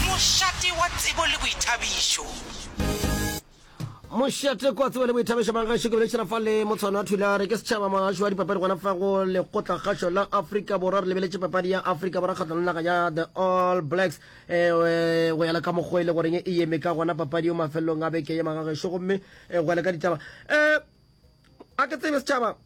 Mošate wa tsebo le boithabišo. Mošate kwa tsebo le boithabišo ba gašo ke beletšhela fa le motshwana thulare ke setšhaba mogašo wa dipapadi gona fa go lekgotla gašo la afrika borwa re lebeletše papadi ya afrika borwa kgatlano naga ya the all blacks eh, eh, go yala ka mokgwa e le goreng e yeme ka gona papadi yo mafelelong a beke ye magagešo gomme eh, go yala ka ditaba um a ke tsebe setšhaba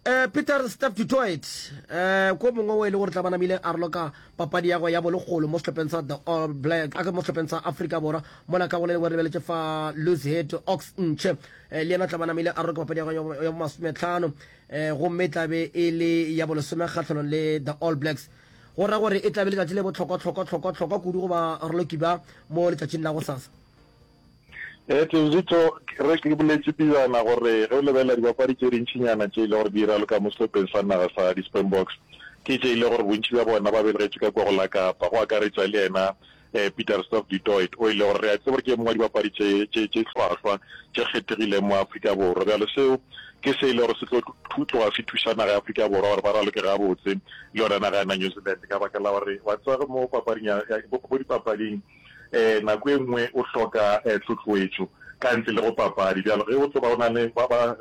um peter step detroit um ko mongwe o e le gore tla ba namile a roloka papadi ya go ya bolekgolo mo setlhopheng sa the all black a ke mo setlhopheng sa africa borwa mola ka go le lengwe re lebeletše fa luzhead ox ntšhe um le yena o tla ba namile a roloka papadi ya go ya bomasometlhano um gomme e tlabe e le ya bolesome kgatlhanong le the all blacks go ra gore e tlabe letšatši le botlhokwa-tlhokwa-tlhokwa-tlhokwa kudu goba roloki ba mo letšatšing la go sasa Tle Zitho, re ke boletše pejana gore ge o lebelela dibapadi tše dintšinyana tše e le gore di ira le ka mo sehlopheng sa naga sa di-Springboks, ke tše e le gore bontši bja bona ba belegetšwe ka kwa go la Kapa, go akaretša le yena Pieter-Steph du Toit o e le gore re a tseba gore ke e mongwe wa dibapadi tše tše hlwahlwa tše kgethegileng mo Afrika Borwa. Bjale seo ke se e le gore se tlo tloga se thuša naga ya Afrika Borwa gore ba raloke gabotse le yona naga ya na New Zealand ka baka la gore wa tseba mo papading ya mo dipapading nako e nngwe o hloka tlhohloetšo ka ntle le go papadi. Bjalo ge o tlo ba o na le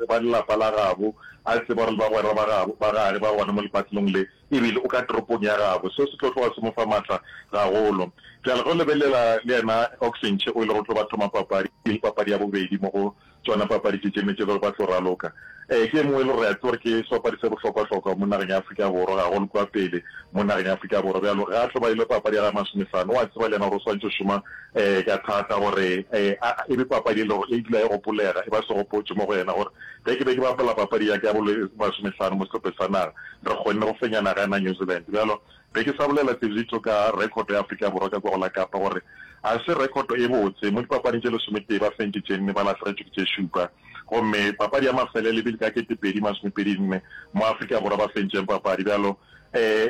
ba lelapa la gabo, a tseba gore le bagwera ba gabo ba gare ba gona mo lepatlelong le, e bile o ka toropong ya gabo, seo se tlo tloga se mo fa matla gagolo. Bjalo ge o lebelela le yena Oxenche o e lego o tlo ba thoma papadi, e le papadi ya bobedi mo go Tšona papadi tše tše ne tše le gore ba tlo raloka. Ee, ke e mongwe e le gore re a tseba gore ke sebapadi se bohlokwa-hlokwa mo nageng ya Afrika Borwa, ga go le kwa pele mo nageng ya Afrika Borwa. Bjalo ga a tlo ba ile papadi ya gage ya masomehlano, o a tseba le yena gore o swantšwe go šoma ka thata gore e be papadi e le gore e dula e gopolega, e ba segopotšo mo go yena gore ge ke be ke bapala papadi ya ka ya bo masomehlano mo sehlopheng sa naga, re kgonne go fenya naga ya na New Zealand. Bjalo Be ke sa bolela tse litho ka rekhoto ya Afrika Borwa ka kwa go la Kapa gore ga se rekhoto e botse. Mo dipapading tše lesometee ba fentše tše nne, ba lahlegetšwe ke tše šupa. Gomme papadi ya mafelelo e bile ka kete pedi masomepedi nne mo Afrika Borwa ba fentšeng papadi. Bjalo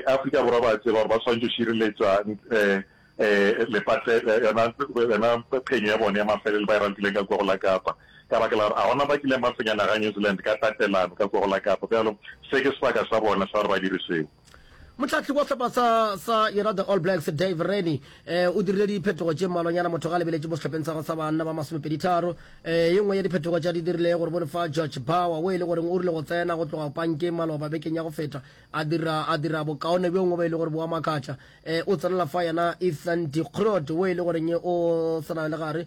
Afrika Borwa ba a tseba gore ba swanetše go šireletša yona phenyo ya bone ya mafelelo ba e rapileng ka kwa go la Kapa ka baka la gore ga gona ba kileng ba fenya naga ya New Zealand ka tatelano ka kwa go la Kapa. Bjalo se ke sebaka sa bona sa gore ba dire seo. Motlhahli wa sehlopha sa, sa yona the All Blacks Dave Rennie eh, o dirile diphetogo tše mmalwanyana motho ga lebeletše mo sehlopeng sa go sa banna ba masomepeditharo eh, ye nngwe ya diphetogo tša di dirile gore bone fa George Bauer o e le goreng o rile go tsena go tloga pankeng maloba bekeng ya go feta a dira, a dira bokaone bjo ngwe ba e le gore boa makatla eh, o tsenela fa yena Ethan Dikrot o e le goreng o tsena le gare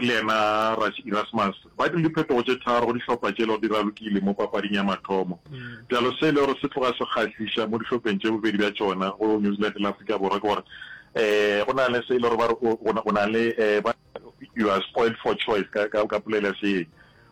le yena Rassi Erasmus, ba dirile diphetogo tše tharo go dihlopha tše e lego di ralokile mo papading ya mathomo, bjalo se e lego se tloga se kgahliša mo dihlopheng tše bobedi bja tšona go New Zealand le Afrika Borwa ke gore um go na le se e lego ba re o o na le ba you are spoiled for choice ka ka ka polelo ya seeng.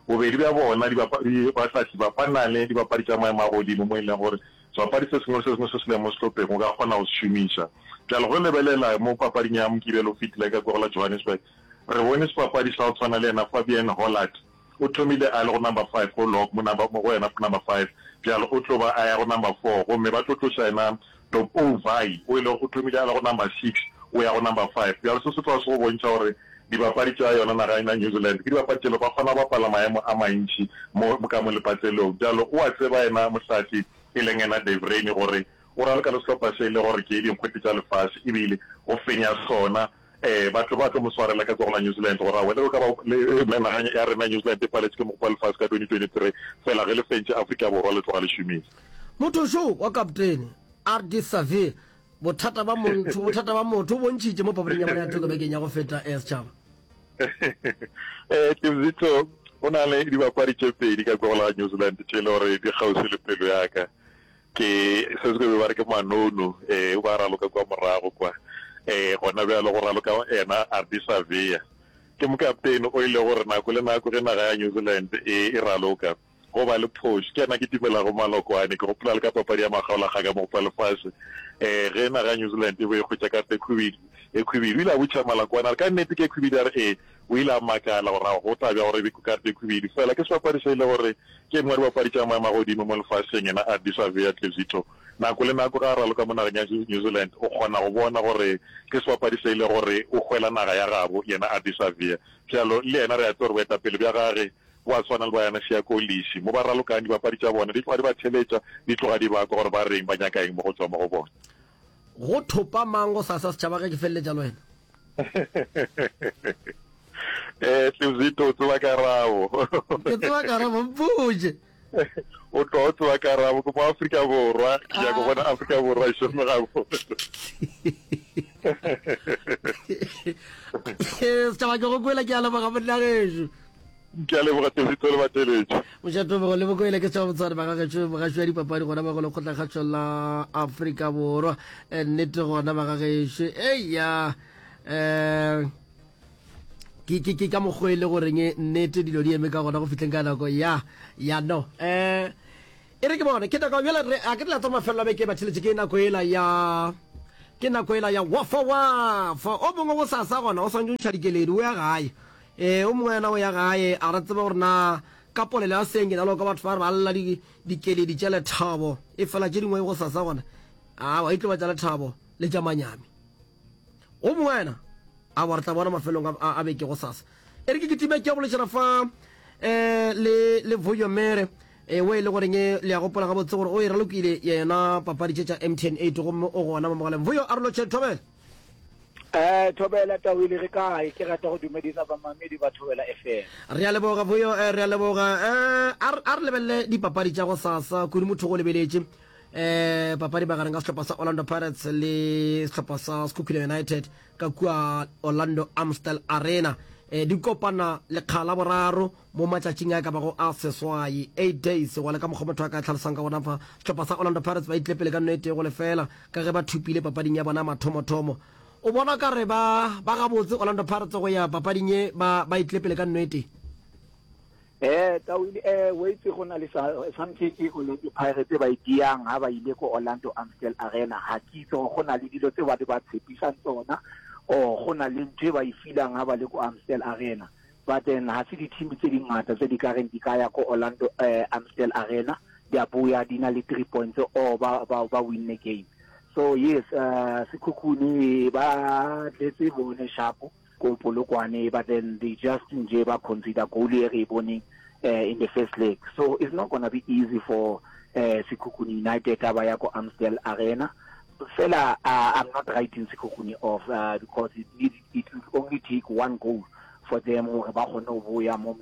Bobedi bja bona, dibapadi, bahlahli ba ba na le dibapadi tša maemo a godimo mo e leng gore Sebapadi se sengwe le se sengwe se se lego mo sehlopheng o ka kgona go se šomiša. Bjale ge o lebelela mo papading ya Mokibelo o fetile ka kwagala Johannesburg, re bone sebapadi sa go tshwana le yena Fabian Hollard. O thomile a le go number five go lock mo number mo go yena go number five, bjale o tlo ba a ya go number four gomme ba tlo tloša yena Dop Ouvai o e lego o thomile a le go number six o ya go number five. Bjale se se tloga se go bontšha gore Dibapadi tša yona naga ena New Zealand ke dibapadi tše le ba kgona go bapala maemo a mantši mo ka mo lepatselong. Bjalo o a tseba yena Mohlahli e leng yena Dave Rennie gore o raloka le sehlopha se e le gore ke dinkgwete tša lefase ebile o fenya sona. Ee, batho ba tlo mo swarela ka tsogo la New Zealand gore aowa le ge o ka ba le naga ya rena New Zealand e paletše ke Mokopa wa Lefase ka 2023 fela ge le fentše Afrika Borwa le tloga le šomiša. Mothošo wa kaptene Ardie Savea Bothata ba montho, bothata ba motho bo ntšhitše mo papading ya bona ya thoko bekeng ya go feta eh, setšhaba. Eh, Tibzito, go na le dibapadi tše pedi ka kwa la New Zealand tše e le gore di kgauswi le pelo ya ka ke se se be ba re ke manono eh ba raloka kwa morago kwa eh gona bjalo go raloka ena Ardisavea ke mokaptene o ile gore nako le nako ge naga ya New Zealand e e raloka go ba le phoši. Ke yena ke timelago maloko ane. Ke gopola le ka papadi ya magaola ga ka mogopo wa lefase, um ge naga ya New Zealand e be e hwetša karata e khwibidu, e khwibidu. O ile a botšiša maloko ane, a re, Ka nnete ke e khwibidu? A re, Ee. O ile a makala gore, Ao, go tla bjang gore e be karata e khwibidu? Fela ke sebapadi se e lego gore ke e nngwe ya dibapadi tša maemo a godimo mo lefaseng, yena Ardie Savea Tlezitho. Nako le nako ge a raloka mo nageng ya New Zealand, o kgona go bona gore ke sebapadi se e lego gore o hwela naga ya gabo, yena Ardie Savea. Bjalo, le yena re a tseba gore boetapele bja gage Gwa swana le ba yana Šiakolliši, mo ba ralokang dibapadi tša bona, di tloga di ba theletša, di tloga di bakwa gore ba reng, ba nyaka eng mo go tšwa mo go bona. Go thopa mang gosasa setšhaba ge ke feleletša le wena? Ee, Tlevzito, o tseba karabo. Ke tseba karabo, mpotše. O tloga o tseba karabo, ke mo-Afrika Borwa, ke nyaka go bona Afrika Borwa e šome gabotse. Setšhaba ke go kwele, ke a leboga monna gešo. Ke a leboga Tevito le bateletši. Moja Tebogo le Bokoele ke tšwa botswadi ba gagetšo mogaši wa dipapadi gona ba go lekgotlakgatšo la Afrika Borwa Eh, nnete gona ba gagetšo eya um ke ke ke ka mokgwa e le goreng e nnete dilo di eme ka gona go fihleng ka nako ya ya no um e re ke bone ke nako bjale re a ke tla tsa mafelelo a beke ba tšheletse ke nako ela ya ke nako ela ya wafa wafa o mongwe go sasa gona o swantse o ntšha dikeledi o ya gae Ee, o mongwe yena o ya gae, a re, Tsebe gore na ka polelo ya seng ke na le go kwa batho ba re ba lla di, dikeledi tša lethabo, efela tše dingwe gosasa gona, awa, e tlo ba tša lethabo le tša manyami. O mongwe yena, Awa, re tla bona mafelong a, a, a beke gosasa. E re ke kitime ke ya bolešana fa um le, le Vuyo Mere, ewe e le goreng le a gopola gabotse gore o e ralokile yena papadi tše tša MTN 8, gomme o gona mo mogaleng. Vuyo, a re lo tšhe, thobela. Eh, Thobela Tawile re kae? Ke rata go dumedisa bamamedi ba Thobela FM. Re a leboga boyo, eh, re a leboga. Eh, a re- a re lebelele dipapadi tša go sasa kudu motho go lebeletše eh papadi magareng ga sehlopha sa orlando pirates le sehlopha sa sekhukhune united ka kua orlando amstel arena eh di kopana lekga la boraro Mo matšatšing a ka bago a seswai, eight days, gona ka mokgwa motho a ka tlhalosang ka gona fa, sehlopha sa Orlando Pirates ba itlile pele ka nono e tee go lefela ka ge ba thopile papading ya bona mathomothomo. O bona ka re ba ba gabotse Orlando Pirates go ya papading ye ba ba itlile pele ka nono e tee. Ee, Tawini, ee, o itse go na le sa, something e Orlando Pirates ba e diang ha ba ile ko Orlando Amstel Arena. Ha ke itse gore go na le dilo tse ba di ba tshepisang tsona or go na le ntho e ba e filang ha ba le ko Amstel Arena. Batten ga se dithimi tše dingata tše di ka reng di ka ya ko Orlando Amstel Arena di a boya di na le three points or ba ba ba winne game. So yes Sekhukhune ba tletse bone shapo ko Polokwane but then they just nje ba conceder goal e re e boneng in the first leg. So it's not gonna be easy for Sekhukhune United ha ba ya ko Amstel Arena. Fela I'm not writing Sekhukhune off because it needs it will only take one goal for them gore ba kgone go boya mo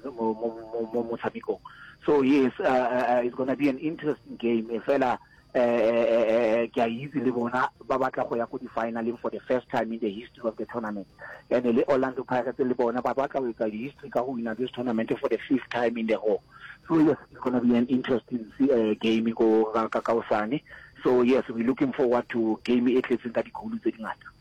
motshamekong so yes uh, uh, uh, it's gonna be an interesting game e fela eh ke a itse le bona ba batla go ya go di-finaleng for the first time in the history of the tournament and le orlando pirates le bona ba batla go etsa history ka go wina this tournament for the fifth time in the row so yes it's going to be an interesting uh, game go ka kaosane so yes we're looking forward to game e tletseng ka dikgolo tse dingata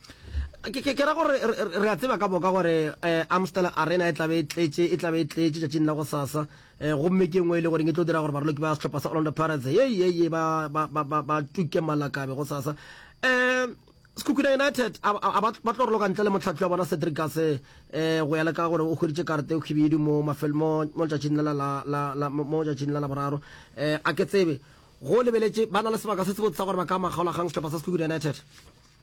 Ke ra gore re a tseba ka boka gore Amstel Arena e tlabe e tletše, e tlabe e tletše tšatšing la go sasa. Gomme ke engwe e le gore e tlo dira gore baroloki ba sehlopha sa Orlando Pirates ye ye ye ba ba ba ba ba tuke malakabe go sasa. Um Sekhukhune United a ba tlo roloka ntle le motlhatli wa bona Cedric Gase um go ya le ka gore o hweditše karete o khibidu mo mafelo mo mo tšatšing la la la mo tšatšing la la boraro. Um a ke tsebe go lebeletše ba na le sebaka se se botsa gore ba ka makgaolagang sehlopha sa Sekhukhune United.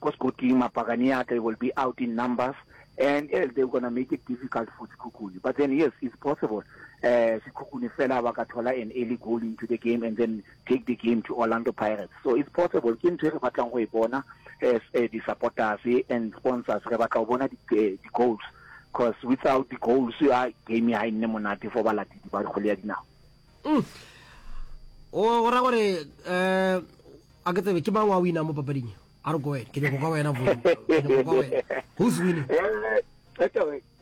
ko Skoti, mapakane ya ka e will be out in numbers and yes they gonna make it difficult for Sekhukhune but then yes it's possible uh, Sekhukhune fela ba ka thola an early goal into the game and then take the game to Orlando Pirates so it's possible ke ntho e re batlang go e bona as uh, di-supporters and sponsors re batla go bona eh, di-goals because without di-goals ya ah, game ha e nne monate for balatedi ba kgole ya dinao mm. o ra gore um a ke tsebe ke mang wa wina mo papading e a re ko wena ke nyako ka wena vo ke nyako ka wena who's winning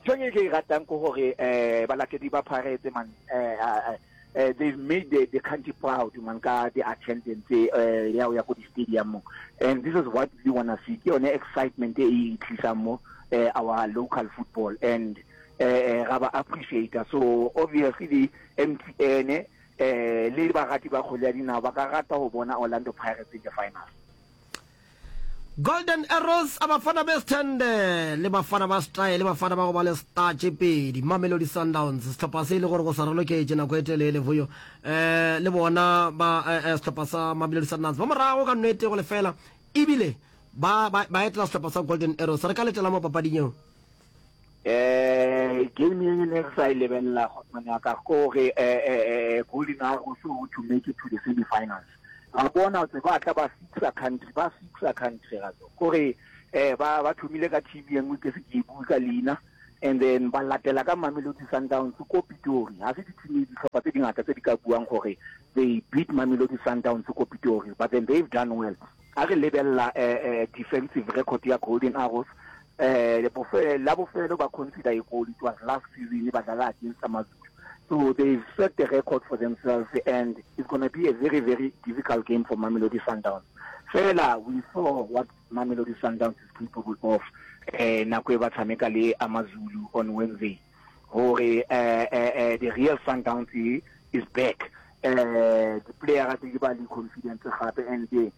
thong e ke e ratang ko gore um balatedi ba pharetse man um uh, they've made the, the country proud man ka the attendance uh, ya ya ko di-stadium mo and this is what we want to see ke yone excitement e e tlisang mo uh, our local football and uh, uh, ra ba appreciator so obviously the mtn Le bagati ba kgwele ya dinao ba ka rata go bona Orlando Pirates in the finals. Golden Arrows a Bafana Bes'thende le Bafana ba Style le Bafana ba go ba le star tše pedi. Mamelodi Sundowns sehlopha se e le gore go sa raloketše nako e telele voyo eh, le bona ba eh, eh, sehlopha sa Mamelodi Sundowns ba morago ka nwete go lefela ebile ba, ba, ba etela sehlopha sa Golden Arrows. Re ka letela mo papading eo. um game ye ne re sa e lebelela kgotsong ya ka kore um golden arrows o to make it to the semi finals ra bona tse ba tla ba fixa country ba fixa country ra tso kore um ba ba thomile ka team ye nngwe ke se ke e bue ka leina and then ba latela ka mamelodi sundowns ko pitori ga se ditshimi ditlhopha tse dingata tse di ka buang gore they beat mamelodi sundowns ko pitori but then they've done well a re lebelela um defensive record ya golden arrows Bofelo la bofelo ba conceder a goal, it was last season ba dlala against Amazulu. So they set the record for themselves and it's going to be a very very difficult game for Mamelodi Sundowns. Fela we saw what Mamelodi Sundowns is capable of eh, nako e ba tshameka le Amazulu on Wednesday gore eh, eh, eh, the real Sundowns is back eh, the player tse ke ba le confidence gape and eh,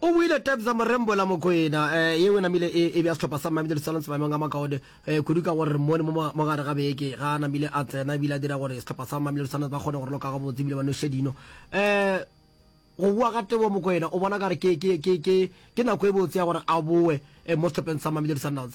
O buile Taps a mo rembola Mokwena, yeo e namile e e bea sehlopha sa Mamelodi Sundowns maemong a makaone kudu ka gore mo le mo mo gare ga beke ga a namile a tsena ebile a dira gore sehlopha sa Mamelodi Sundowns ba kgone go raloka gabotse ebile ba noše dino. Go bua ga Teboho Mokwena o bona ka gore ke nako e botse ya gore a boe mo sehlopheng sa Mamelodi Sundowns.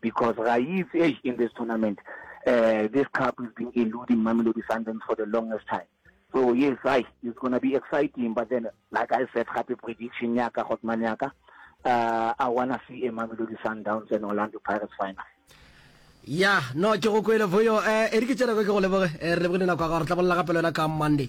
Because ga e itse eish in this tournament uh, this cup has been eluding Mamelodi Sundowns for the longest time. So yes, I it's gonna be exciting, but then like I said, happy prediction yaka Hotman yaka. Uh, I wanna see a Mamelodi Sundowns and Orlando Pirates final. ya no ke go kwele voyo um eh, e re ke tšereko ke go leboge eh, re leboge le nako ya gago re tla bolela gape le wena ka monday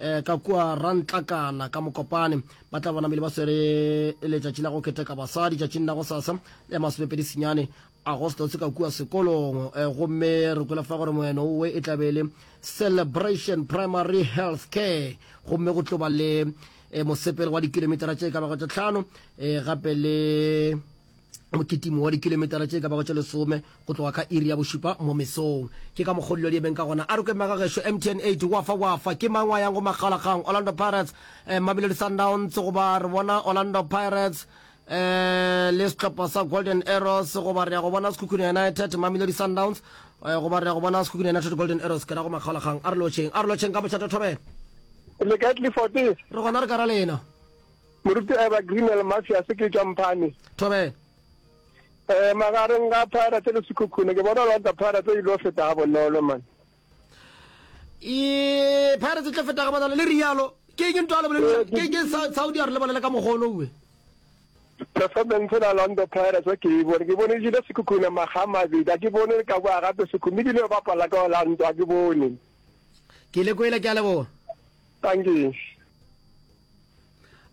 Eh, ka kua ra ntlakana ka mokopane ba tla bona mele ba swere letšatši la go keteka basadi tšatšing la go sasa le masomepedi senyane agostose ka kua sekolong eh, gomme re kwela fa gore moeno owe e tlabele celebration primary health care gomme go tloba le eh, mosepelo wa dikilomitara tše ka bago tše tlhano eh, gape le mokitimo wa dikilometara tše ka bago tše lesome go tloga ka iri ya bošupa mo mesong ke ka mokgwa dilo di emeng ka gona a re kwemega gešo mtn 8 wafa wafa ke mang wa yang go makgalakgang orlando pirates um mamelodi sundowns goba re bona orlando pirates um le sehlopha sa golden arrows goba re ya go bona sekhukhune united mamelodi sundowns um goba re ya go bona sekhukhune united golden arrows ke ra go makgalakgang a re lotšheng a re lotšheng ka mošata thobela le kae tlifotse re gona re ka ra lena Moruti Evergreen El Mafias ke tšwa Mphane. Thobela. Eh magareng ga Pirates le Sekhukhune ke bona Orlando Pirates e ile go feta ga bonolo man. E Pirates e tlo feta ga bonolo le rialo. Ke eng ntwa le bolelisa? Ke ke Saudi ya re le bolela ka mogolo uwe. Performance la Orlando Pirates ke e bone ke bone e jile Sekhukhune magama bidi ke bone ka boa gape Sekhukhune bile ba pala ka Orlando ke bone. Ke le kwele ke a leboga. Tankeng.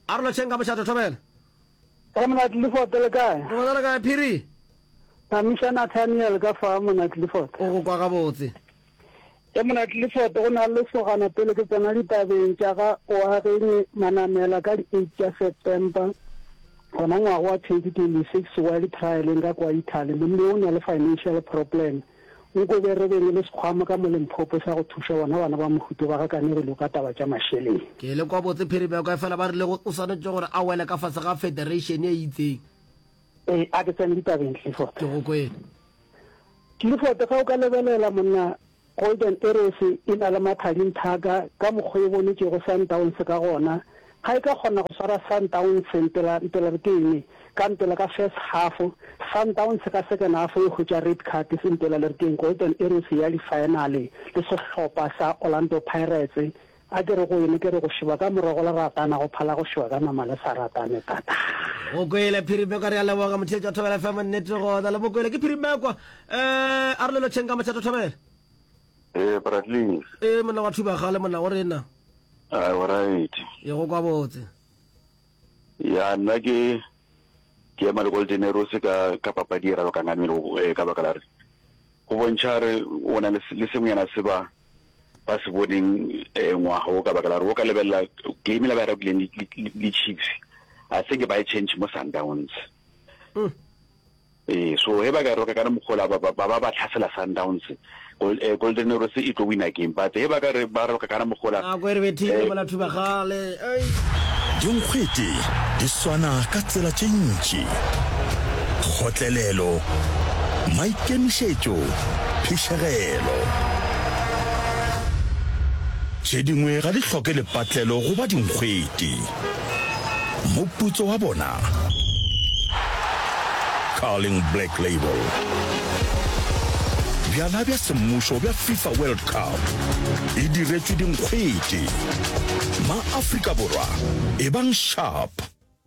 A re lotšheng ka mošate thobela. Ka mona Clifford le kae? Re bona le kae Phiri? Phamisa Nathaniel ka fa mona Clifford. O go kwa gabotse. Ke mona Clifford go na le sogana pele ke tsena ditabeng tša ga Oageng Manamela ka di 8 tša September gona ngwaga wa 2026 while trialing ka kwa Italy. Monna o na le financial problem. Nko be re beng le sekgwamo ka mo Limphopo sa go thuša bona bana ba mohuto ba ga Kanegelo ka taba tša mašeleng. Ke lekwa botse Phirimeko, efela ba rile o swanetše gore a wele ka fase ga federation e itseng. Ee, a ke tsene ditabeng, Clifford. Ke go kwele. Clifford, ge o ka lebelela, monna, Golden Arrows e na le mathadinthaka ka mokgwa e bonetšego Sundowns ka gona, Ga e tla kgona go swara Sundowns mpela mpela re ke eng ka mpela ka first half, Sundowns ka second half e hwetša red card se mpela le re ke eng Golden Arrows e ya di final le sehlopha sa Orlando Pirates. A ke re go ene ke re go šeba ka morago go leratana go phala go šeba ka nama le sa ratane tataa. Mokwele Phirimekwa re a leboga motheetši wa Thobela FM nnete gona le Mokwele ke Phirimekwa eh Arolelo Tšhenka Motšhato Thobela. Ee, Bradley's. Ee, monna wa Thubagale, monna o rena. A o right. Ye go kwa botse. Ya nna ke ke ema le Goldenerose ka ka papadi e ralo ka ngamelo eh, ka baka la re go bontšha re o na le se- le sengwenyana se ba ba se boneng eh, ngwaga o ka baka la re o ka lebelela game la ba e rabileng le- le le Chiefs a se ke ba e change mo Sundowns Mm. Ee, so he ba ka e roka ka mokgwa ola, ba ba ba tlhasela Sundowns, Golden Arrows e tlo wina game, but he ba ka re ba roka ka mokgwa ola, Nako e re bethile mola Thubagale, eish. Dinkgwete di swana ka tsela tše ntši, kgotlelelo, maikemišetšo, phišegelo. Tše dingwe ga di hloke lepatlelo go ba dinkgwete. Moputso wa bona, Carling Black Label. Bjala bja semmušo bja FIFA World Cup e diretšwe dinkgwete. Ma-Afrika Borwa, ebang sharp,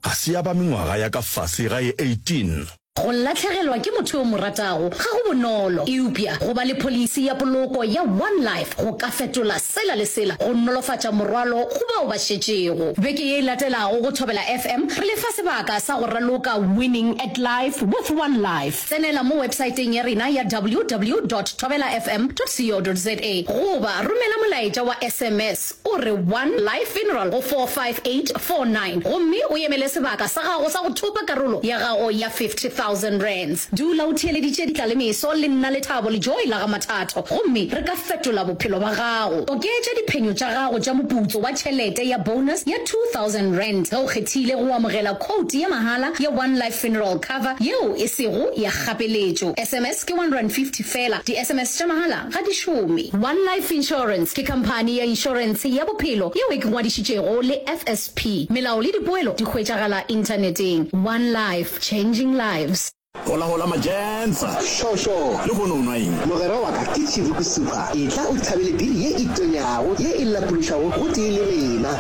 ga se ya ba mengwaga ya ka fase ga e 18. Go latlhegelwa ke motho yo o mo ratago ga go bonolo, eupša go ba le pholisi ya poloko ya One Life go ka fetola sela le sela go nolofatša morwalo go bao ba šetšego. Beke ye e latelago go Thobela FM re le fa sebaka sa go raloka Winning at Life with One Life. Tsenela mo websaeteng ya rena ya ww dot thobelafm dot co dot za goba romela molaetša wa sms O re, One Life Funeral go 45849, gomme o emele sebaka sa gago sa go thopa karolo ya gago ya R50,000. Dula o theeleditše ditlalemeso le nna Lethabo le Joy la ga Mathatho, gomme re ka fetola bophelo bja gago. Oketša diphenyo tša gago tša moputso wa tšhelete ya bonus ya R2,000 ge o kgethile go amogela khoutu ya mahala ya One Life Funeral Cover yeo e sego ya kgapeletšo. SMS ke R150 feela. Di-SMS tša mahala ga di šome. One Life Insurance ke khamphani ya inšorense ya bophelo yeo e ke ngwadišitšego le FSP. Melao le dipoelo di hwetšagala inthaneteng. One Life, changing lives. Hola hola Majensa. Šošo. Lehono o nwa eng? Mogwera wa ka ke Tšhiruku Super. Etla o thabele biri ye e tonyago, ye e lapološago gotee le rena.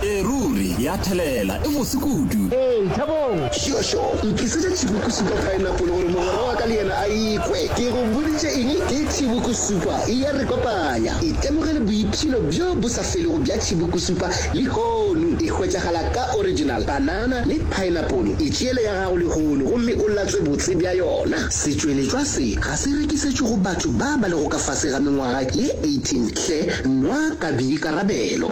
Ee ruri, ya thelela, e mose kudu. Ee, thabong. Tšhošo, Nkisetša tšhibuku supa paenapole gore mogwera wa ka le yena a e kwe. Ke go boditše eng? Ke tšhibuku supa e a re kopanya. Itemogele boipshino bjo bo sa felego bja tšhibuku supa lehono. E hwetšagala ka original banana le paenapole. Itšeele ya gago lehono gomme o latswe botse bja yona. Setšweletšwa se ga se rekisetšwe go batho ba ba lego ka fase ga mengwaga ye 18 hle, nwa ka boikarabelo.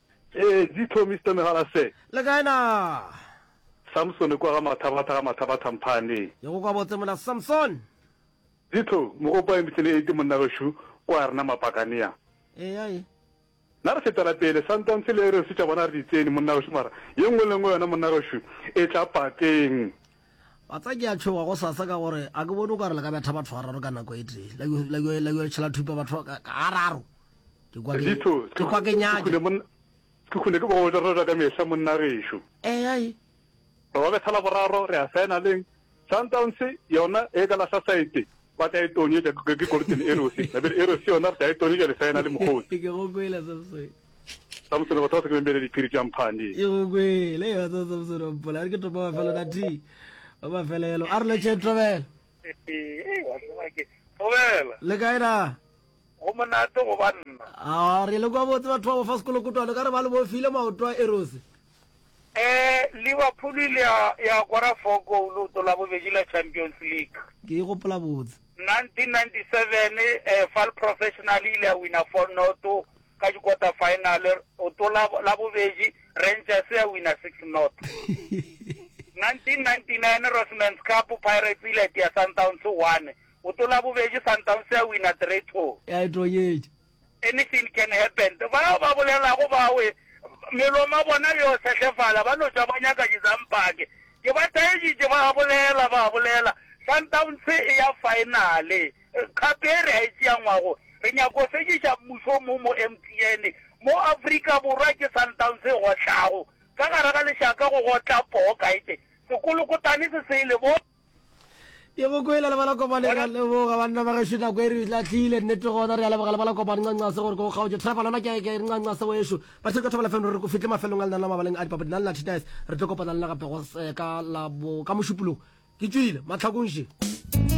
Ee, di tlo, Mister Megala Sir. Le kae naa? Samsone kwa ga Mathabatha ga Mathabatha Mphane. Ke go kwa botse mona Samson. Di tlo, Mogopo I Mitlele Eti monna gešo kwa rena Mapakanea. Eya e. Na re fetela pele, Santance le Errors tša bona re di tsene monna gešo mara ye nngwe le nngwe yona monna gešo e tla pateng. Batsa ke a tšhoga go sasa ka gore a ke bone o ka re le ka betha batho ga raro ka nako e tee la yo letšhela thupa batho ga raro ke kwa ke Litho, ke kwa ke nyake khune mon- ke khune ke bogoja roja ka mehla monna gešo. eh ai Re ba betha la boraro re a saena leng Sundowns yona e ka lahla saete ba tla e tonyetša ke ke Golden Arrows. Nabile Arrows yona re tla e tonyetša le saena le mokgotsi. ke go kwele Samson Samsone, batho ba se ke bembele diphiri tša mphandi. Ke go kwele, e batsa Samsone wa mpola, a re ke topa mafelo na thi, wa mafelelo. A re letšeng Tobela. Tobela. Le kae na? Go monate go banna. A re le kwa botse batho ba bofa sekolo kutwane, ka re ba le bofile maoto a erose. Eh, Liverpool ile ya ya kora four goal o tola bobedi la Champions League. Ke e gopola botse. 1997 eh, Fal Professional ile ya wina four not Ka dikota-faenale go tlo la, Labobedi, Rangers ya wina six not. 1999 Rossman's Cup, Pirates e ile ya itia Sundowns one, go tlo Labobedi Sundowns ya wina three two. Ya e tonyetša. Anything can happen. Bao ba bolelago bawe, meloma bona yo sehlefala, ba no tšwa ba nyaka dizampake. Ke ba taeditše, ba a bolela, ba a bolela. Sundowns e ya faenale. Kgato ye re a e tšeangwago, re nyaka go fediša mmušo mo mo MTN, mo Afrika Borwa ke Sundowns e gotlago, ka gare ga lešaka go gotla poo kaete, sekolokotane se se le bo. Ke go kwele le ba la kopane re a leboga banna ba gešo nako e re lahlile nnete gona re a leboga le ba la kopane ncancase gore ko kgaotše trevor lona ke ke ncancase wešo ba theko thobela feng re ko fihle mafelong a lena la mabaleng a dipapadi na le lathi dice re tlo kopana le na gape go ka la bo ka mošupologo ke tšwile mahlakong še